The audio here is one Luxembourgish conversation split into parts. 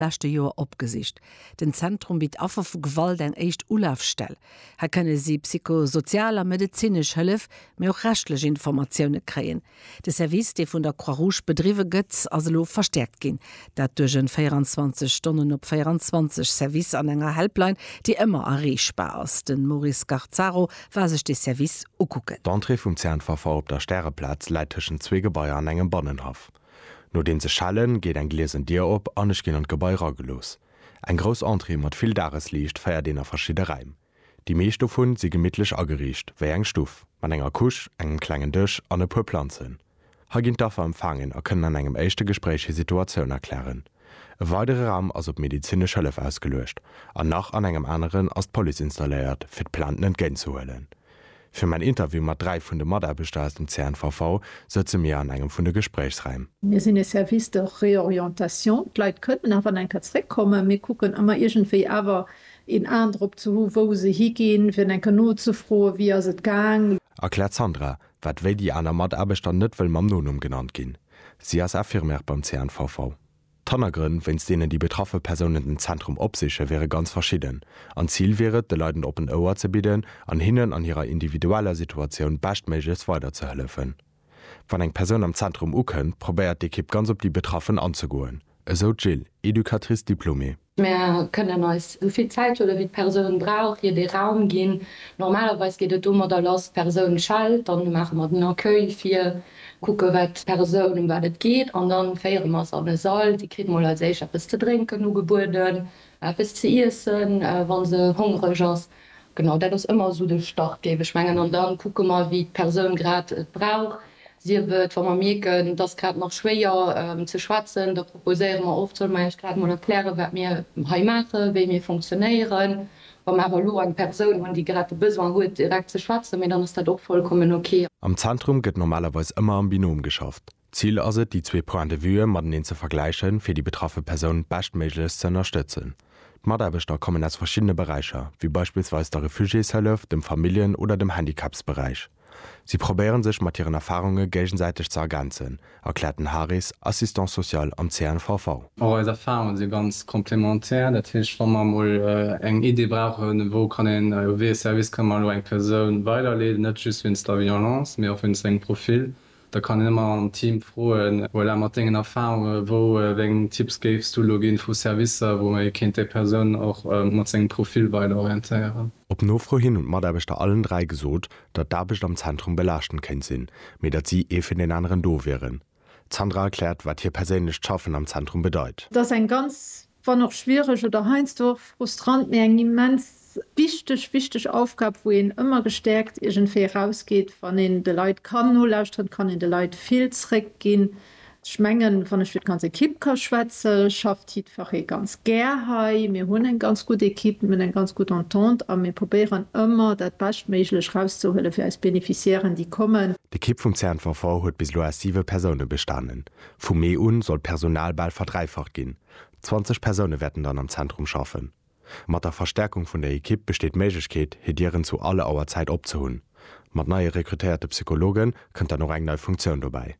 leschte Joer opgesicht. Den Zentrum bitt Affer vu Gewalt eng éischt Ulafstell. Hei kënne si psychosozial a medezinesch Hëllef, mee och rechtlech Informatioune kréien. De Service, dee vun der Croix-Rouge bedriwwe gëtt, ass elo verstäerkt ginn. Dat duerch en 24 Stonnen op 24 Service an enger Helpline, déi ëmmer erreechbar ass. De Maurice Garzaro war sech dee Service ukucken. D'Entrée vum Zernpfaffer op der Stäreplaz läit tëschent zwee Gebaier an engem Bannenhaff. Nodeems ech schellen, geet eng gliesen Dier op an ech ginn an d'Gebai ragelooss. Eng grouss Entrée mat vill Dagesliicht feiert een a verschidde Räim. Déi meescht dovun si gemittlech ageriicht, wéi eng Stuff, mat enger Couche, engem klengen Dësch an e puer Planzen. Hei ginn d'Affer empfaangen a kënnen an engem éischte Gespréich hir Situatioun erklären. E weidere Raum ass op medezinesch Hëllef ausgeluecht an nach an engem aneren ass d'Police installéiert, fir d'Plainten entgéintzehuelen. Fir mäin Interview mat dräi vun de Mataarbechter aus dem CNVV sëtze mir an engem vun de Gespréichsraim. Mir sinn e Service de réorientation. D'Leit kënnen nach an eng Kéier zréckkommen. Mir kucken ëmmer iergendwéi awer een Aen drop ze hu wou se higinn, fir eng Kéier nozefroen, wéi ass et gaang. Erkläert d'Sandra, wat wéi déi aner Mataarbechter net wëll mam Nonumm genannt ginn. Si ass Infirmière beim CNVV. D'Hannergrënn, wéinst deenen déi betraffe Persounen den Zentrum opsichen, wiere ganz verschidden. An d'Zil wier et, de Leit en oppent Ouer ze bidden an hinnen an hirer individueller Situatioun beschtméiglechst weiderzehëllefen. Wann eng Persoun am Zentrum ukënnt, probéiert d'Ekipp ganz op déi Betraffen anzegoen, esou d'Jill, Educatrice diplômée. Mir kënnen eis sou vill Zäit huelen, wéi d'Persoun brauch, hir dee Raum ginn. Normalerweis geet et domadder lass, d'Persoun schellt, dann maache mer den Accueil vir, kucke wat d'Persoun, ëm wat et geet an da féiere mer se an e Sall. Si kritt mol als éischt eppes ze drénken ugebueden, eppes ze iessen, wa se hongreg ass. Genau dat ass ëmmer esou de Start, géif ech mengen. An da kucke mer, wéi d'Persoun grad et brauch. Sief et, wa mer mierken, et ass grad nach schwéier ze schwätzen, da proposéiere mer oft, solle mer Iech grad emol erklären, wat mir hei maachen, wéi mir fonctionnéieren, wa mer awer elo eng Persoun hunn, déi grad de Besoin huet, direkt ze schwätzen, mee dann ass dat och vollkommen ok. Am Zentrum gëtt normalerweis ëmmer am Binom geschafft. D'Zil ass et, déi zwee Points de vue mateneen ze vergläichen, fir déi betraffe Persoun beschtméiglechst ze ënnerstëtzen. D'Mataarbechter kommen aus verschiddene Beräicher, wéi beispillsweis der Refugiéshëllef, dem Familljen oder dem Handicapsberäich. Si probéiere sech mat hiren Erfarunge géigesäiteg ze ergänzen, erkläert den Haris, Assistant social am CNVV. Och eis Erfarunge si ganz complémentaire. Dat heescht, wa mer emol eng Idee brauchen, wou kann een, wéi ee Service kënne mer elo eng Persoun weiderleeden, net just wéinst der Violence, mee och wéinst sengem Profil, Da kann een ëmmer am Team froen. Voilà, mat dengen Erfahrunge, wou wéi eng Tipps géifs du elo ginn vu Servicer, wou ee kéint déi Persoun och mat sengem Profil weider orientéieren? Op Nofro hin hunn d'Mataarbechter allen dräi gesot, datt d'Aarbecht am Zentrum belaaschtend kéint sinn, mee datt si ee fir deen aneren do wieren. D'Sandra erkläert, wat hir perséinlecht Schaffen am Zentrum bedeit. Et ass eng ganz wann och schwiereg, oder heiansdo och frustrant, mee eng immens wichteg, wichteg Aufgab, wou een ëmmer gestäerkt iergendwéi erausgeet, wann een de Leit kann nolauschteren, kann een de Leit vill zréckginn. Ech mengen, wann ech fir d'ganz Ekipp ka schwätze schafft jiddferree ganz gär hei. Mir hunn eng ganz gutt Ekipp, mir hunn eng ganz gutt Entente a mir probéieren ëmmer dat Beschtméiglech erauszehuele fir eis Beneficiairen, déi kommen. D'Ekipp vum CNVV huet bis elo aus siwe Persoune bestanen. Vu Mee un soll d'Personal bal verdräifacht ginn, 20 Persoune wäerten dann am Zentrum schaffen. Mat der Verstärkung vun der Ekipp besteet d'Méiglechkeet, hir Dieren zu all Auer Zäit opzehunn. Mat neie rekrutéierte Psychologe kënnt dann och eng nei Funktioun dobäi.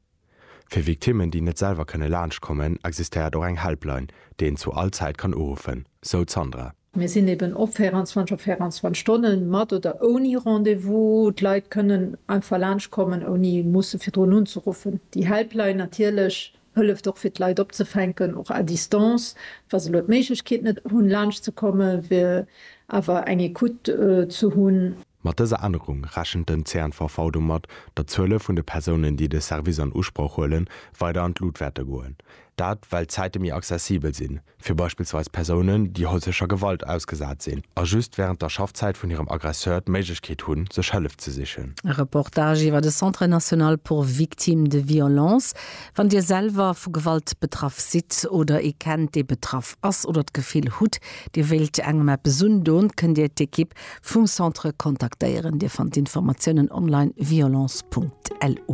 Fir Victimmen, déi net selwer kënne laanscht kommen, existéiert och eng Helpline, déi een zu all Zäit kann uruffen, sou d'Sandra. Mir sinn eben op 24 op 24 Stonnen, mat oder ouni Rendez-vous. D'Leit kënnen einfach laanscht kommen ouni musse virdrun unzeruffen. Déi Helpline natierlech hëlleft och fir d'Leit opzefänken, och à distance. Wa se elo d'Méiglechkeet net hunn laanscht ze kommen, wier awer eng Ecoute ze hunn. Mat dëser Ännerung rechent den CNVV domat, datt d'Zuele vun de Persounen, déi de Service an Usproch huelen, weider an d'Lut wäerte goen. Dat, well d'Zäite méi accessibel sinn, fir beispillsweis Persounen, déi häuslecher Gewalt ausgesat sinn a just wärend der Schaffzäit vun hirem Aggresseur d'Méiglechkeet hunn, sech Hëllef ze sichen. E Reportage iwwer de Centre national pour victimes de violences. Wann Dir selwer vu Gewalt betraff sidd oder ee kennt, dee betraff ass oder d'Gefill hutt, Dir wéilt engem eppes undoen, kënnt Dir d'Ekipp Vum Centre kontaktéieren. Dir fannt d'Informatiounen online violence.lu.